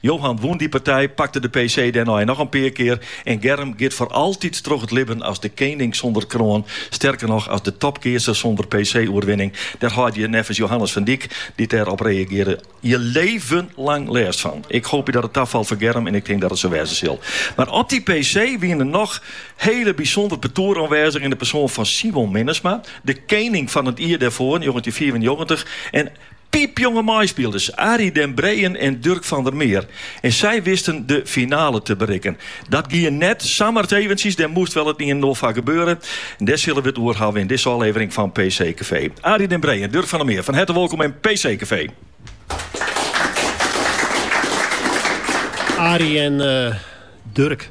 Johan wûn dy partij, pakte de PC dêrnei noch in pear kear en Germ giet foar altyd troch it libben as de kening sûnder kroan, sterker noch, as de topkeatser sûnder PC-oerwinning. Dêr hâlde je neffens Johannes van Dijk, dy't dêr op reagearre, je leven lang lêst fan. Ik hoopje dat it tafalt foar Germ en ik tink dat it sa wêze sil. Mar op dy PC wie noch in hiel bysûnder partoer oanwêzich yn de persoan fan Simon Minnesma, de kening fan it jier dêrfoar, njoggentjinhûndertfiifennjoggentich, en, Piepjonge meispilers Arie den Breejen en Durk van der Meer. En sy wisten de finale te berikken. Dat gie net samar eventsjes, dêr moast wol it ien en oar foar gebeure. Dêr sille we it oer hawwe yn dizze ôflevering fan PC Café. Arie den Breejen en Durk van der Meer, fan herte wolkom yn PC Café. Arie en Durk.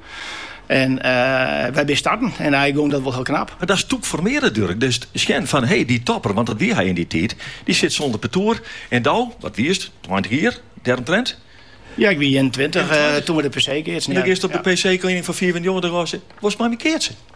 En wy binne starten en eink gong dat wol hiel knap. Mar dat is toch ek formearjen, Durk, dus sjen fan hé dy topper, want dat wie hy yn dy tiid, dy sit sûnder partoer en do, wat wiest, tweintich jier dêromtrint? Ja, ik wie ienentweintich, toen we de PC keatsten. En dan giest op de PC-kening fan fiifennjoggentich ôf en seist, wolst mei my keatsen?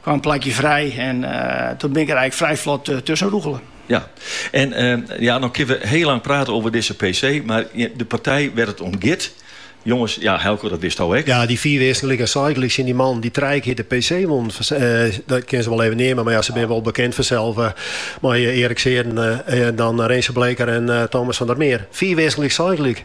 Kwam plakje frij en doe bin ik der eink frij flot tusken rûgele. Ja, en ja, no kinne we hiel lang prate over dizze PC, mar de partij wêr't it om giet, jonges, ja, Eelke, dat witsto ek. Ja, dy fiif earsten gelyk, seis gelyk tsjin dy mannen dy't trije kear de PC wonnen, dat kinne se wol even neame, mar ja, se binne wol bekend fansels mei Erik Seerden, dan Rinse Bleeker en Thomas van der Meer. Fiif earsten gelyk, seis gelyk.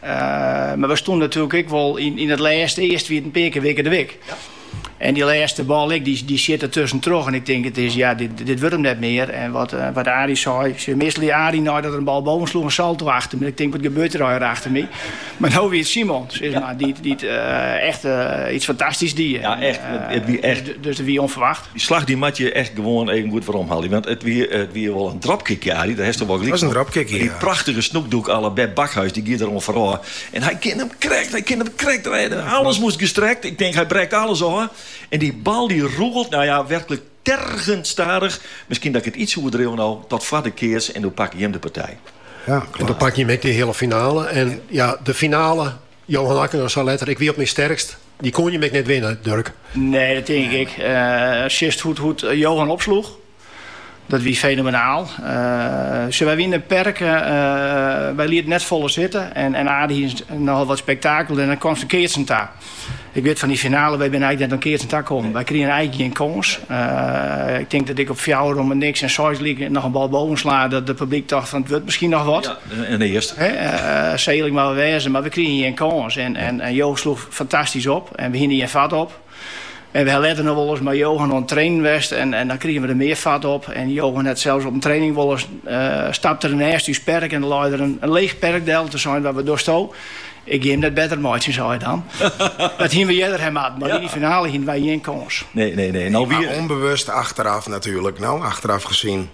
Mar we stoene natuerlik ek wol yn it lêst. Earst wie it in pear kear wikkerdewik. En dy lêste bal ek, dy sjit der tusken troch en ik tink it is, ja, dit wurdt him net mear. En wat Arie sei, sjoch, meastal die Arie nei dat er in bal boven sloech in salto achter my. Ik tink, wat gebeurt der hjir achter my? Mar no wie it Simon, sis mar, dy't echt iets fantastysk die. Ja, echt. It wie echt. Dus it wie ûnferwacht. Dy slach dy moat je echt gewoan even goed weromhaalje. Want it wie, it wie wol in dropkickje, Arie, dêr haste wol gelyk fan. It was in dropkickje, ja. Dy prachtike snoekdûk à la Beb Bakhuys, dy gie der oan foarôf. En hy kin hem krekt, hy kin hem krekt rêde. Alles moast gestrekt, ik tink hy brekt alles ôf. En dy bal dy rûgelt, nou ja, werklik tergend stadich. Miskien dat ik it iets oerdriuw no, tot foar de keats en doe pakke jim de partij. Ja, klopt. En doe pakke jim ek de hiele finale. En ja, de finale. Johan Okkinga sei letter, Ik wie op myn sterkst. Dy koene jim ek net winne, Durk. Nee, dat tink ik ek. As sjochst hoe't Johan opsloech, dat wie fenomenaal. Sjoch, wy wiene perk, wy lieten net folle sitte en Aad hie nochal wat spektakel en dan komst oan keatsen ta. Ik wit fan dy finale, wy binne eink net oan keatsen ta kommen. Wy krigen eink gjin kâns. Ik tink dat ik op fjouwer om 'e niks en seis gelyk noch in bal boven sla, dat it publyk tocht fan it wurdt miskien noch wat. yn eare. Seding woe we wêze, mar we krigen gjin kâns en Johan sloech fantastysk op en we hiene der gjin fat op. En we ha letter noch wolris mei Johan oan it trainen west en dan krigen we der mear fat op. En Johan hat sels op 'e training wolris stapte er nêst ús perk en der lei er in leech perk del. Toen sei er, wat dosto? Ik gean him net better meitsjen, sei er dan. Dat hiene we earder ha moatten, mar yn dy finale hiene wy gjin kâns. Nee, nee, nee. Ûnbewust achteraf natuerlik, no achteraf gesien.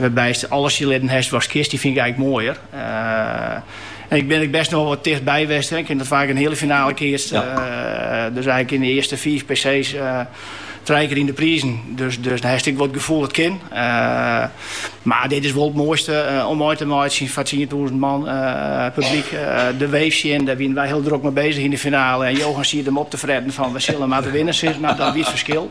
Wêrby'tst alles sjen litten hast watst kinst, dy fyn ik earlik moaier. En ik bin ek best noch wat tichtby west, ik ha net faak in heale finale keatst. Dus earlik yn de earste fiif PC's trije kear yn de prizen. Dus dan hast ek wat gefoel, it kin. Mar dit is wol it moaiste om mei te meitsjen foar tsientûzen man publyk. De Wave sjen, dêr wiene wy hiel drok mei bezich yn de finale en Johan siet him op te fretten fan we sille en moatte winne sis, mar dat wie it ferskil.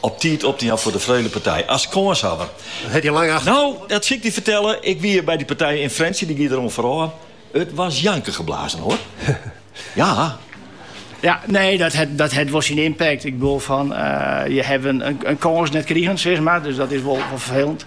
Op tiid op te jaan foar de Freulepartij as kânshawwer. Dat hat hja lang acht. No, dat sil ik dy fertelle. Ik wie by dy partij yn Frjentsjer, dy gie deroan foarôf. It wie janken geblazen, hoar. Ja. Ja, nee, dat hat, dat hat wol syn impact. Ik bedoel, fan, uh, je hawwe in, in, in kâns net krigen, sis mar. Dus dat is wol, wol ferfelend.